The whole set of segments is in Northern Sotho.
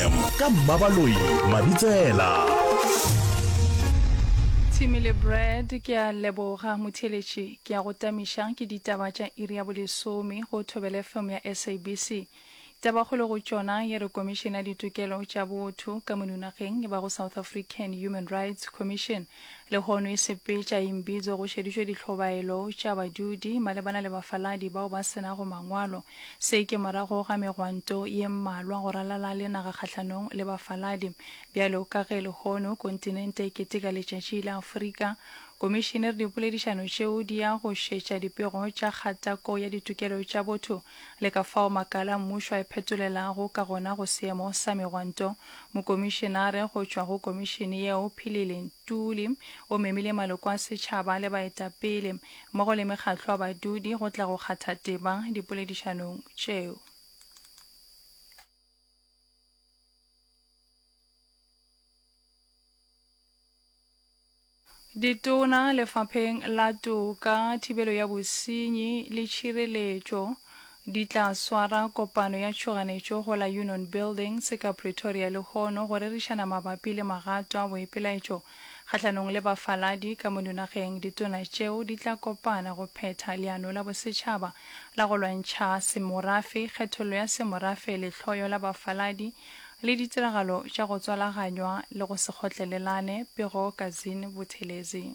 fm ka mmabaloi mabitsela Tshimi le Brad ke a leboga motheletši ke a go tamiša ke ditaba tša iri ya bolesome go Thobele FM ya SABC. Tabakgolo go tšona ye re Komišene ya Ditokelo tša Botho ka monunageng e bago South African Human Rights Commission lehono e sepetša e mbidzo go šeditšwe dihlobaelo tša badudi malebana le bafaladi bao ba senago mangwalo Se ke morago ga megwanto ye mmalwa go ralala le naga kgahlanong le bafaladi. Bjalo ka ge lehono kontinente e keteka Letšatši la Afrika, Komišene re dipoledišano tšeo di ya go šetša dipego tša kgatako ya ditokelo tša botho le ka fao makala a mmušo a iphetolelago ka gona go seemo sa megwanto. Mokomišenare go tšwa go Komišene yeo, Philile Ntuli, o memile maloko a setšhaba le baetapele mmogo le mekgatlo ya badudi go tla go kgatha teba dipoledišanong tšeo. Ditona lefapheng la toka, thibelo ya bosenyi le tšhireletšo Di tla swara kopano ya tšhoganetšo go la Union Buildings ka Pretoria lehono go rerišana mabapi le magato a boipelaetšo kgahlanong le bafaladi ka mo dinageng. Ditona tšeo di tla kopana go phetha leano la bosetšhaba la go lwantšha semorafe, kgethollo ya semorafe, lehloyo la bafaladi le ditiragalo tša go tswalaganywa le go se kgotlelelane, Pego Kazin Buthelezi.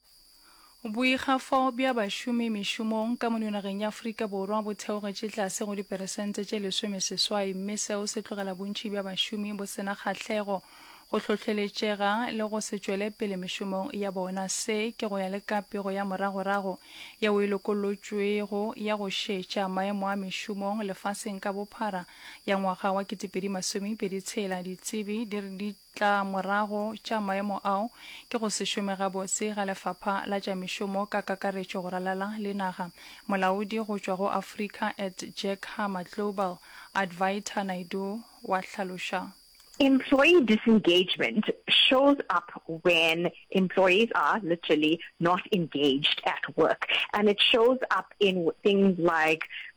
Boikgafo bja bašomi mešomong ka mo nageng ya Afrika Borwa bo theogetše tlase go diperesente tše lesomeseswai mme seo se tlogela bontši bja bašomi bo se na kgahlego, go hlohleletšega le go se tšwele pele mešomong ya bona. Se ke go ya le ka pego ya moragorago yeo e lokolotšwego ya go šetša maemo a mešomong lefaseng ka bophara ya ngwaga wa 2020 tshela. Ditsebi di re di Tla morago tša maemo ao ke go se šome gabotse ga Lefapha la tša Mešomo ka kakaretšo go ralala le naga. Molaodi go tšwa go Africa at Jack Hammer Global, Advaita Naidoo, wa hlaloša. Employee disengagement shows up when employees are, literally, not engaged at work and it shows up in things like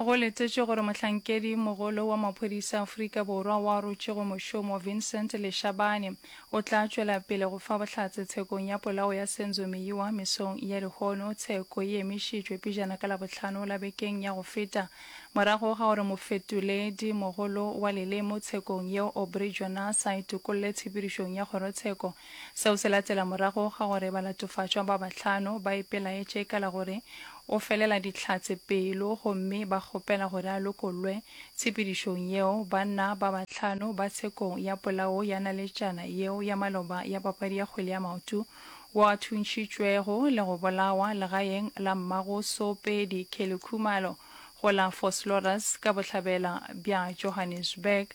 Go letetšwe gore mohlankedi mogolo wa maphodisa Afrika Borwa wa rutšego mošomo Vincent Leshabane o tla tšwela pele go fa bohlatse tshekong ya polao ya Senzo Meyiwa mesong ya lehono. Tsheko e emišitšwe pejana ka Labohlano la bekeng ya go feta morago ga gore mofetoledi mogolo wa lelemo tshekong yeo Aubrey Jonas a itokolle tshepedišong ya kgorotsheko. Seo se latela morago ga gore balatofatšwa ba bahlano ba ipelaetše ka la gore O felela Dihlatse pelo gomme ba kgopela gore a lokollwe. Tshepedišong yeo, banna ba bahlano ba tshekong ya polao ya naletšana yeo ya maloba ya papadi ya kgwele ya maoto wo a thuntšhitšwego le go bolawa legaeng la mmago Soopedi Kelly Khumalo go la Vosloorus ka bohlabela bja Johannesburg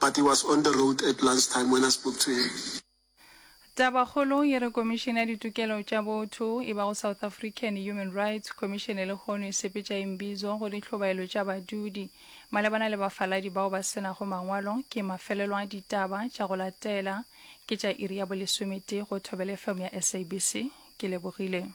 But he was on the road at lunch time when I spoke to him. Tabakgolo e re Komišene ya Ditokelo tša Botho, e bago South African Human Rights Commission lehono e sepetša Imbizo go dihlobaelo tša badudi malebana le bafaladi bao ba se nago mangwalo ke mafelelo a ditaba tša go latela ke tša iri ya bolesometee go Thobela FM ya SABC. Ke lebogile.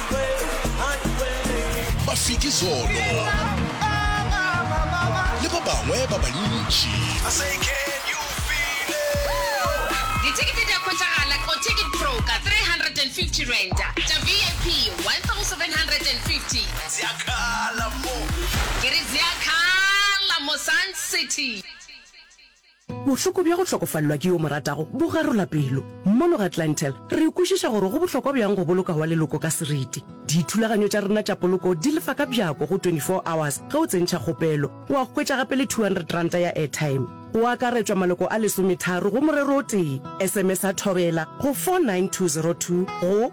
Mafiki Zolo le ba bangwe ba bantši. Dithekete di a hwetšagala ko Ticket Pro ka R350, tša VIP R1,750. Ke re zea khala mo Sun City. Bohloko bja go hlokofalelwa ke yo o mo ratago bo garola pelo. Mono Gatlantel, re kwešiša gore go bohlokwa bjang go boloka wa leloko ka seriti. Dithulaganyo tša rena tša poloko di lefa ka bjako go 24 hours ge o tsentšha kgopelo. O a hwetša gape le R200 ya airtime. Go akaretšwa maloko a lesometharo go morero o tee. SMS-a Thobela go 49202 go.